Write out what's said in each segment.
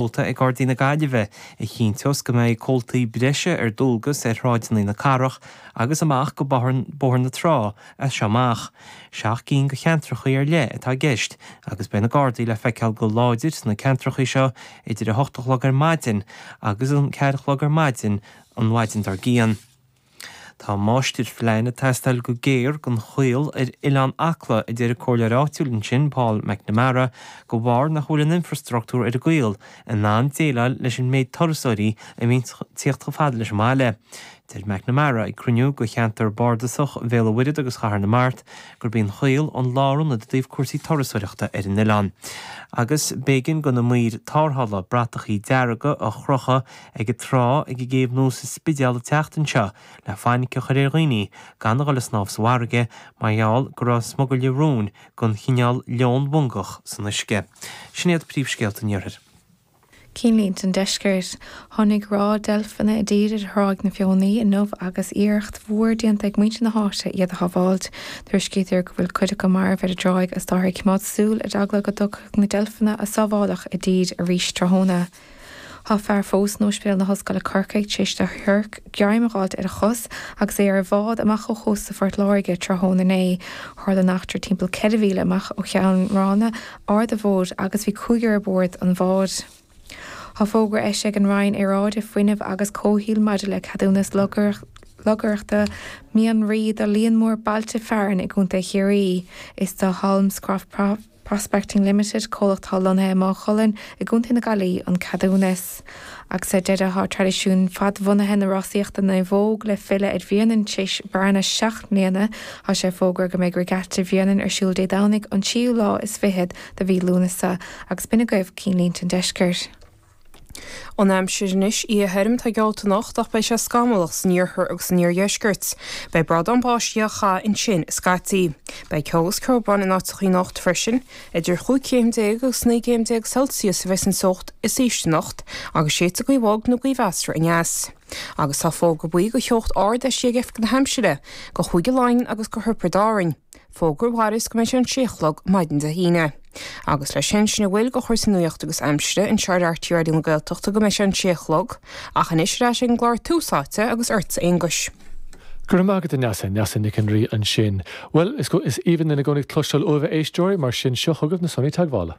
Seolta ag Gardaí na Gaillimhe a chinnteos go mbeidh comhaltaí breise ar dualgas ar shráideanna na cathrach agus amach go Bóthar na Trá as seo amach. Seacht gcinn de cheantrachaí ar leith atá i gceist agus beidh na Gardaí le feiceáil go láidir sna ceantrachaí seo idir a hocht a chlog ar maidin agus an ceathair a chlog ar maidin an mhaidin dár gcionn. Tá máistirphlean ag teastáil go géar don Chaol ar Oileán Acla a deir an comhairleoir áitiúil ansin, Paul McNamara, de bharr nach bhfuil an infreastruchtúr ar an gCaol in ann déileáil leis an méid turasóirí a bhíonn ag teacht chomh fada leis an mbaile. Deir McNamara, ag cruinniú de cheantar bardasach Bhéal a' Mhuirthead agus Chathair na Mart, gurb í an Chaol an lárionad i dtaobh cúrsaí turasóireachta ar an oileán agus b'éigean do na maoir tarrthála bratachaí dearga a chrochadh ag an trá ag an gCéibh Nua sa Spidéal an tseachtain seo le fainic a chur ar dhaoine gan a dhul ag snámh sa bhfarraige mar gheall go raibh smugairle róin den chineál leon mongach san uisce. Sin iad príomhscéalta an iarthair. Cinnlínte an deiscirt. Tháinig ráth deilfeanna i dtír ar Thráigh na Feothanaí inniu agus iarracht mhór déanta ag muintir na háite iad a shábháilt. Tuairiscítear go bhfuil cuid acu marbh ar an dtráigh is táthar ag coimeád súil ar eagla go dtiocfadh na deilfeanna a sábháileadh i dtír arís tráthnóna. Tá fear fós in Óispidéal na hOllscoile Corcaigh tar éis do shiorc greim a dh'fháilt ar a chos agus é ar a bhád amach ó chósta Phort Láirge tráthnóna inné. Tharla an eachtra timpeall ceithre mhíle amach ó Cheann Ráma, Aird Mhóir agus bhí cúigear ar bord an bháid. Tá fógra eisithe ag an Roinn Aeráide, Fuinnimh agus Comhshaoil maidir le ceadúnas lorgaireachta mianraí do líon mór bailte fearainn i gContae Chiarraí. Is do Holmescroft. Prospecting Limited, comhlacht atá lonnaithe i Maigh Cuilinn i gContae na Gaillí, an ceadúnas. Agus ar deireadh tá traidisiún fadbhunaithe na rásaíochta naomhóg le filleadh ar Bhréanainn tréis bearna seacht mbliana, tá sé fógartha go mbeidh Regatta Bhréanainn ar siúl Dé Domhnaigh an tríú lá is fichead de mhí Lúnasa, agus b'in agaibh cinnlínte an deiscirt. An aimsir anois oíche thirim atá geallta anocht ach beidh sé scamallach san iarthar agus san iardheisceart. Beidh bradán báistí á chaitheamh ansin scaití. Beidh ceo agus ceobhrán in áiteachaí anocht freisin. Idir chúig chéim déag agus naoi gcéim déag Celsius a bheidh san teocht is ísle anocht agus séidfidh gaoth bhog nó gaoth mheasartha aneas. Agus tá fógra buí de theocht ard eisithe ag Oifig na hAimsire, do Chúige Laighean agus do Thiobraid Árann. Fógra a mhairfeas go mbeidh sé an sé a chlog maidin Dé hAoine. Agus leis sin, sin a bhfuil de chúrsaí nuaíochta agus aimsire, anseo ar RTÉ Raidió na Gaeltachta go mbeidh sé an sé a chlog, ach anois ar ais ag an gclár Tús Áite agus ortsa a Aonghuis. Go raibh maith agat a Neasa, Neasa Nic an Rí ansin. Bhuel, is aoibhinn linn i gcónaí ag cloisteáil uaibh a éisteoirí, mar sin, seo chugaibh na sonraí teagmhála.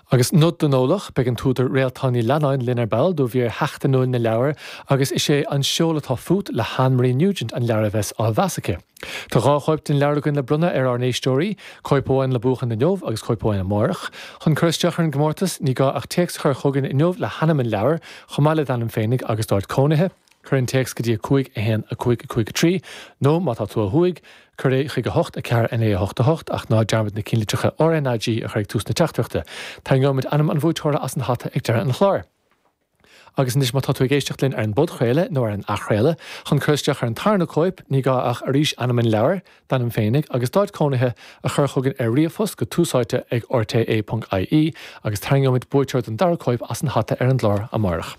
Agus nod don eolach, beidh an t-údar Réaltán Ní Leannáin linn ar ball do mhír sheachtainiúil na leabhar agus is é An Seol atá Fút le hAnn Marie Nugent an leabhar a bheas á mheas aici. Tá dhá chóip den leabhar againn le bronnadh ar ár n-éisteoirí, cóip amháin le buachan inniu agus cóip amháin amárach. Chun cur isteach ar an gcomórtas, ní gá ach téacs a chur chugainn inniu le hainm an leabhair, chomh maith le d'ainm féinig agus d'áit cónaithe, cuir an téacs go dtí 5 1 5 5 3 nó, má tá tú ó thuaidh, cuir é chuig 8 4 9 8 8 ach ná dearmad na cinnlitreacha R N A G a chur ag tús na teachtaireachta. Tarraingeoimid ainm an bhuaiteora as an hata ag deireadh an chláir. Agus anois, má tá tú ag éisteacht linn ar an bpodchraoladh nó ar an athchraoladh, chun cur isteach ar an tarna cóip, ní gá ach, arís, ainm an leabhair, d'ainm féinig, agus d'áit cónaithe a chur chugainn ar ríomhphost go túsáite ag rte. ie, agus tarraingeoimid buaiteoir don dara cóip as an hata ar an gclár amárach.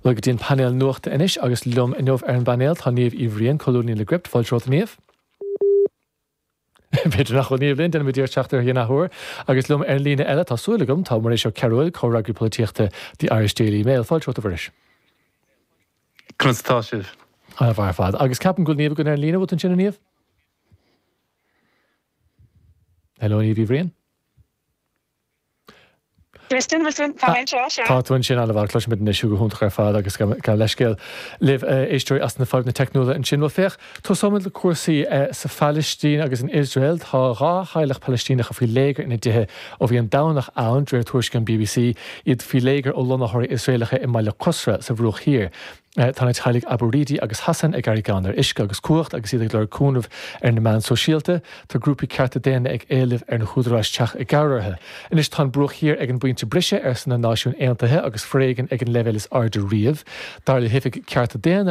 Bhuel go dtí an painéal nuachta anois agus liom inniu ar an bpainéal tá Niamh Uí Bhriain, colúnaí le Gript, fáilte romhat a Niamh. B'fhéidir nach bhfuil Niamh linn, déanfaimid iarracht teacht uirthi in athuair. Agus liom ar an líne eile, tá súil agam, tá Muiris Ó Cearúil, comhfhreagraí polaitíochta The Irish Daily Mail. Fáilte romhat a Mhuiris. Conas atá sibh? Ana mhaith ar fad. Agus ceapaim go bhfuil Niamh againn ar an líne, bhfuil tú ansin a Niamh? Hello Niamh Uí Bhriain. Tá mé anseo, sea. Tá tú ansin, ana mhaith. Cloisimidne anois thú go hiontach ar fad agus gabh leithscéal libh, a éisteoirí, as na fadhbanna teicniúla ansin. Bhuel, féach, tosóimid le cúrsaí sa Phailistín agus in Iosrael. Tá dhá theaghlach Pailistíneacha faoi léigear ina dtithe ó bhí an Domhnach ann, de réir tuairiscí an BBC, iad faoi léigear ó lonnaitheoirí Iosraelacha i mbaile Qusra, sa Bhruach Thiar. Tá na teaghlaigh Abu-Ridi agus Hassan ag éirí gann ar uisce agus cumhacht agus iad ag lorg cúnaimh ar na meáin shóisialta. Tá grúpaí cearta daonna ag éileamh ar na húdaráis teacht i gcabhair orthu. Anois tá an Bruach Thiar ag an bpointe briseadh, arsa na Náisiúin Aontaithe agus foréigean ag an leibhéal is airde riamh, dar le hOifig Cearta Daonna na.